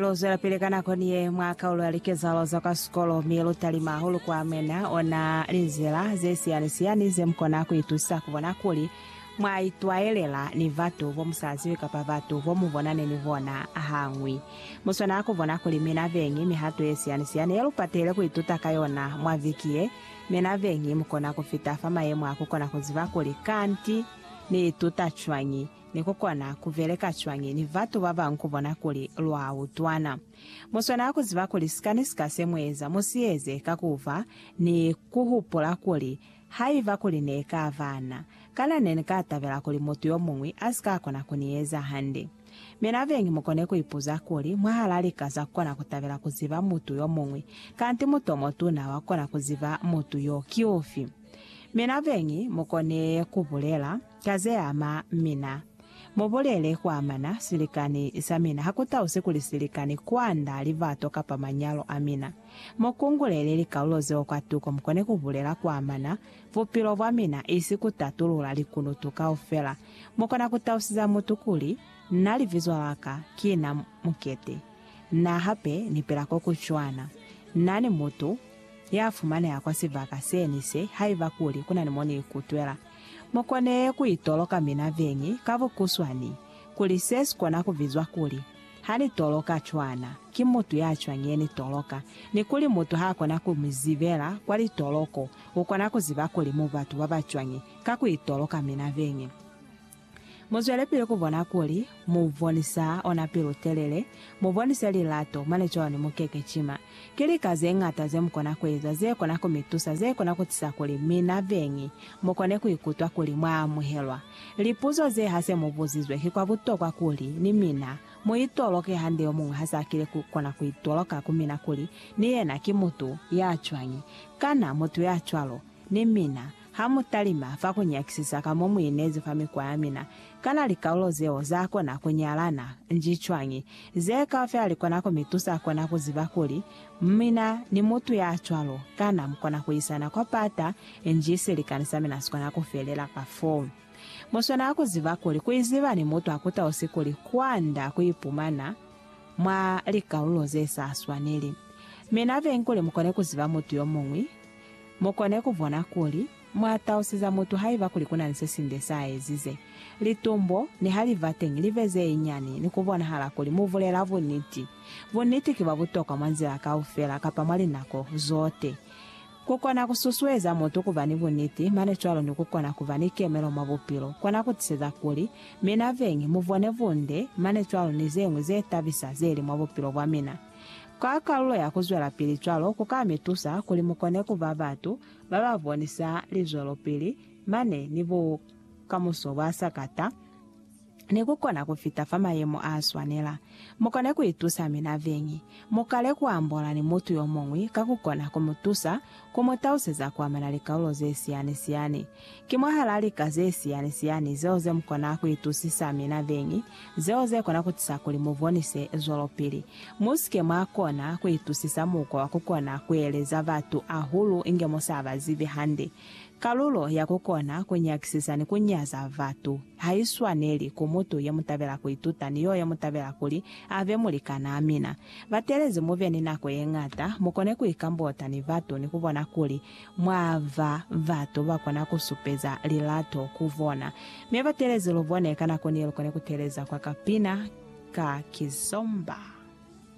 Lu zwelapili ka nako ni ye mwa kaulo ya likezahalo za kwa sikolo mi lu talima hahulu ku amena ona linzila ze siyani-siyani ze mu kona ku itusa ku bona kuli mwa itwayelela ni batu bo mu sa zibi kapa batu bo mu bonani ni bona hañwi. Mu swanela ku bona kuli mi na beñi mihato ye siyani-siyani ye lu patehile ku ituta ka yona mwa viki ye. Mi na beñi mu kona ku fita fa mayemo a ku kona ku ziba kuli, Kanti ni ituta cwañi? Ni ku kona ku beleka cwañi ni batu ba bañwi ku bona kuli lwa utwana? Mu swanela ku ziba kuli sika ni sika se mu eza mu si eze ka ku fa ni ku hupula kuli, Haiba kuli ne ka ba na, kana ne ni ka tabela kuli mutu yo muñwi a si ka kona ku ni eza hande. Mi na beñi mu kone ku ipuza kuli, Mwahal'a lika za ku kona ku tabela ku ziba mutu yo muñwi, kanti mutu o mutuna wa ku kona ku ziba mutu y'o ki ufi? Mi na beñi mu kone ku bulela, Ka ze ama mina, mu bulele kwa mana silikani sa mina, ha ku tausi kuli silikani kwanda libato kapa manyalo a mina. Mu kungulele likalulo zeo kwatuko mu kone ku bulela kwa mana bupilo bwa mina, isi ku tatulula likunutu kaufela. Mu kona ku tausiza mutu kuli, Na libizo la ka ki na Mukete. Na hape ni pela ko ku cwana. Na ni mutu ya fumaneha kwa sibaka se ni se, haiba kuli ku na ni mo ni ikutwela. Mu kone ku itoloka mina veñi ka bukuswani kuli se si kona ku bizwa kuli, Ha ni toloka cwana, ki mutu ya cwañi ye ni toloka, ni kuli mutu ha kona ku mi zibela kwa litoloko, u kona ku ziba kuli mu batu ba ba cwañi ka ku itoloka mina veñi. Muzwelepili kubona kuli mubonisa ona pilu-telele, mubonisa lilato, mane cwalo nimukeke cima. Ki lika zeñata zemukona kueza zekona kumitusa, zekona kutisa kuli mina beñi mukone kuikutwa kuli mwaamuhelwa. Lipuzo ze hase mubuzizwe ki kwa butokwa kuli ni mina muitoloke hande yomuñwi hasakile kukona kuitoloka ku mina kuli ni yena ki mutu yacwañi. Kana mutu yacwalo ni mina? Ha mu talima fa ku nyakisisa ka mo mu inezi fa mikwa ya mina, kana likaulo zeo za kona ku nyalana? Nji cwañi? Ze kaufela li kona ku mi tusa kona ku ziba kuli, Mina ni mutu ya cwalo kana mu kona ku isana kwa pata, nji silikani sa mina si kona ku felela ka fo. Mu swanela ku ziba kuli ku iziba ni mutu ha ku tausi kuli kwanda ku ipumana mwa likaulo ze sa swaneli. Mi na benkuli mu kone ku ziba mutu yo muñwi. Mu kone ku bona kuli mwa tausiza mutu haiba kuli ku na ni se sinde sa ezize. Litumbo, niha li ba teñi, li be ze nyani, ni ku bonahala kuli mu bulela buniti. Buniti ki bwa butokwa mwa nzila kaufela kapa mwa linako zote. Ku kona ku susueza mutu ku ba ni buniti, mane cwalo ni ku kona ku ba ni kemelo mwa bupilo, kona ku tiseza kuli mina beñi mu bone bunde mane cwalo ni ze ñwi ze tabisa ze li mwa bupilo bwa mina. Ka kalulo ya ku zwelapili cwalo ku ka mi tusa kuli mu kone ku ba batu ba ba bonisa lizwelopili mane ni bukamuso bwa sakata ni ku kona ku fita fa mayemo a swanela. Mu kone ku itusa mina beñi. Mu kale ku ambola ni mutu yo muñwi ka ku kona ku mu tusa ku mu taluseza ku amana likalulo ze siyani-siyani Ki mwahalaa lika ze siyani-siyani zeo ze mukona ku itusisa mi nabeñi, zeo ze kona ku tisa kuli mu bonise zwelopili. Mu si ke mwa kona ku itusisa mukwa wa ku kona ku eleza batu ahulu inge mu sa ba zibi hande. Kalulo ya ku kona ku nyakisisa ni ku nyaza batu ha i swaneli ku mutu ye mu tabela ku ituta ni yo ye mu tabela kuli a be mulikanaa mina. Batelezi mu be ni nako ye ñata, mu kone ku ikambota ni batu ni ku bona kuli mwa ba batu ba kona ku supeza lilato ku bona, mi ba telezi lubone ka nako ni lu kone ku teleza kwa kapina ka kizomba.